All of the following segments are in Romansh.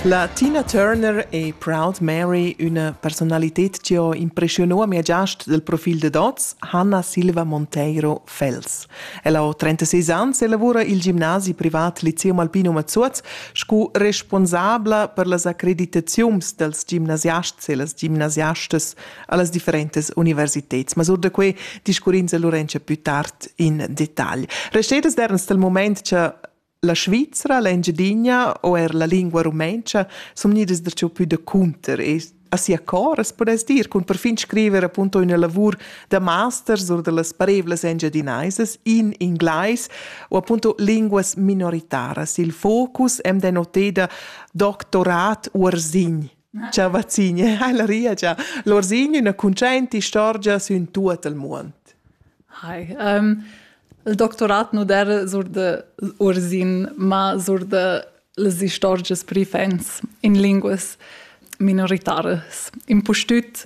La Tina Turner e Proud Mary, üna personalited chi ho impreschiunà a mia giast dal profil dad hoz, Hanna Silva Monteiro Fels. Ella ho 36 ans e lavura i'l gimnasi privat Lyceum Alpino Mazuoz scu responsabla per las accreditaziuns dals gimnasiasts e las gimnasiastas a las differentas universiteds. Ma sur da que discurrins a Lurenza plü tard in detagl. Restetas derns dal mumaint cha La Svizra, l'Engiadina o er la lingua rumentscha sun gnidas darcheu pü da cunter e a sia cor as pudess dir cun perfin scriver appunto üna lavur da masters or da las parevlas engiadinaisas in inglais o appunto linguas minoritaras. Il focus am dà noteda doctorat uorsin Ciao vazzine, la ria già. L'orsign üna cuntschaint istorgia sün tuot il muond. Hi. Um, il doctorat nu der sur de Ursin, ma sur de las istorgias pri fans in linguas minoritaras. Impustüt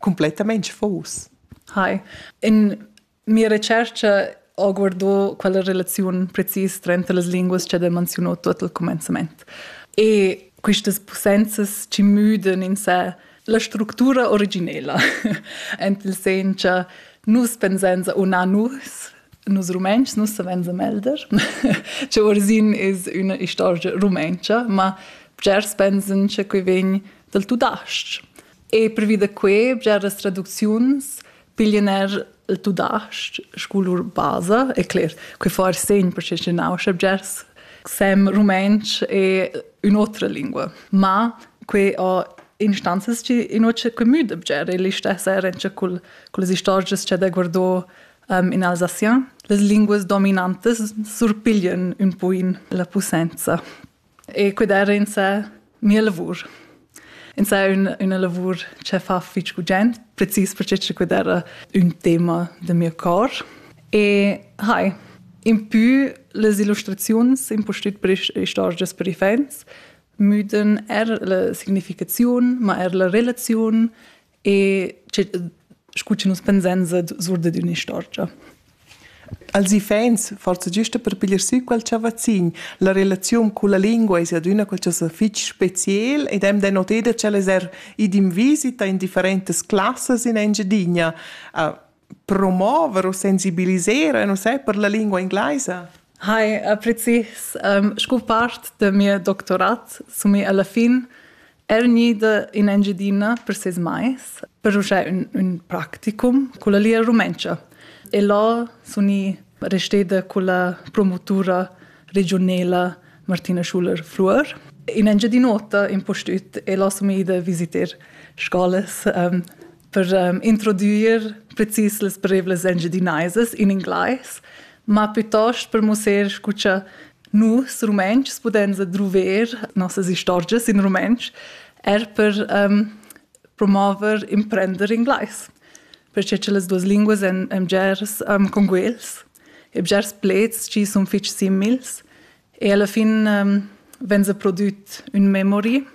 cumplettamain fos. Hai. In mia recerca ho guardò quella relaziun precis tranter las linguas che ha menziunò tot al comenzament. E quistas possenzas ci müdan in sé la structura originela. Ent il sen cha nus pensenza o na nus, nus rumens, nus savenza melder. che Orsin is üna istorgia rumentscha, ma bgers pensan che quei vegn dal tudasc. E pervi da quai, bgeras traducziuns piglian er il tudasc sco lur basa, e cler, que forse in perché nauscha bgers sem rumantsch e un'otra lingua. Ma que ho instanzas chi inüce que müda bger e l'istessa rentscha cul, cullas istorgias cha da guardò um, in Alsacien. Las linguas dominantas surpiglian un poin la pussenza. E cudar insa mia lavur. Insa è una, una lavur che fa fitg gugent, precis perché che cudar un tema del mio cor. E hai, in più les illustraziuns in postut per istorgias per i fans müden er la significaziun, ma er la relaziun e scu che nus pensan sur dad ün'istorgia. Als iffaints, forsa giusta per piglier sü quel chavazzin, la relaziun culla lingua es adüna qualchosa fich speciel ed hem denoté da ch'el es er id in visita in differentas classas in Engiadina. Uh, promover u sensibilisar non sai per la lingua inglesa? Hi, äh, precis. Um, scu part de mia doctorat sumi alla fin er nida in Engiadina per ses mais per uscire un, un practicum con la lia rumenca. E là suni resteda con la promotura regionela Martina Schuler-Fluor. In Engiadinota in postut e là sumi ida visiter scolas um, per um, introdüir precis las parevlas engiadinaisas in inglais, ma piuttost per musser scu cha nus rumentschs pudens adruver nossas istorgias in rumentsch, er per um, promover imprender inglais, perché che las duas linguas èn, èn bgers um, conguels e bgers pleds chi sun fich simils E alla fin um, vegn se prodüt ün memory,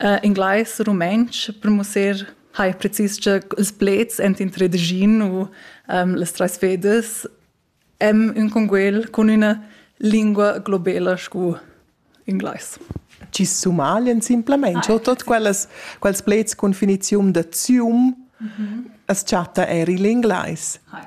uh, inglais, rumantsch, per mussar hai precis che ils plets ent in tredegin u um, les treis fedes em ün conguel con üna lingua globela scu inglais. Ci sumaglien simplemente ah, tot quellas quels plets con finizium da zium mm -hmm. as chatta er il inglais. Hi.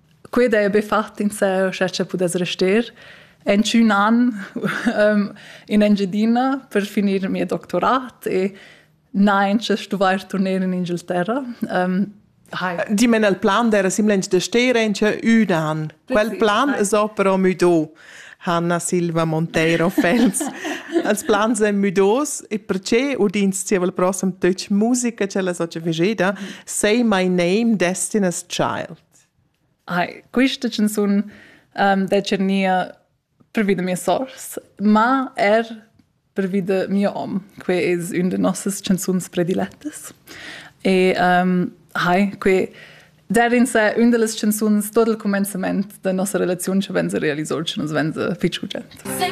Quei dai be fat insè, scha cha pudess rester. En tschun an um, in Engiadina per finir il mio doctorat e nein, sche stuvair turner in Ingilterra. Um, Hi. Die men el plan der simlench de Steren che un an. Quel plan es però müdo. Hanna Silva Monteiro Fels. Els plans en müdos e perché udins ti il prossem touch musica ce la soce vegeda say my name destiny's child. Hai, quista chanzun um, dà tschernir pervi da mia sors, ma er pervi da mio hom. Quai es ün da nossas chanzuns predilettas. E um, hai, que dar in se ün da las chanzuns tot il cumenzament da nossa relaziun cha venza realiso, cha nus venza fich gugent.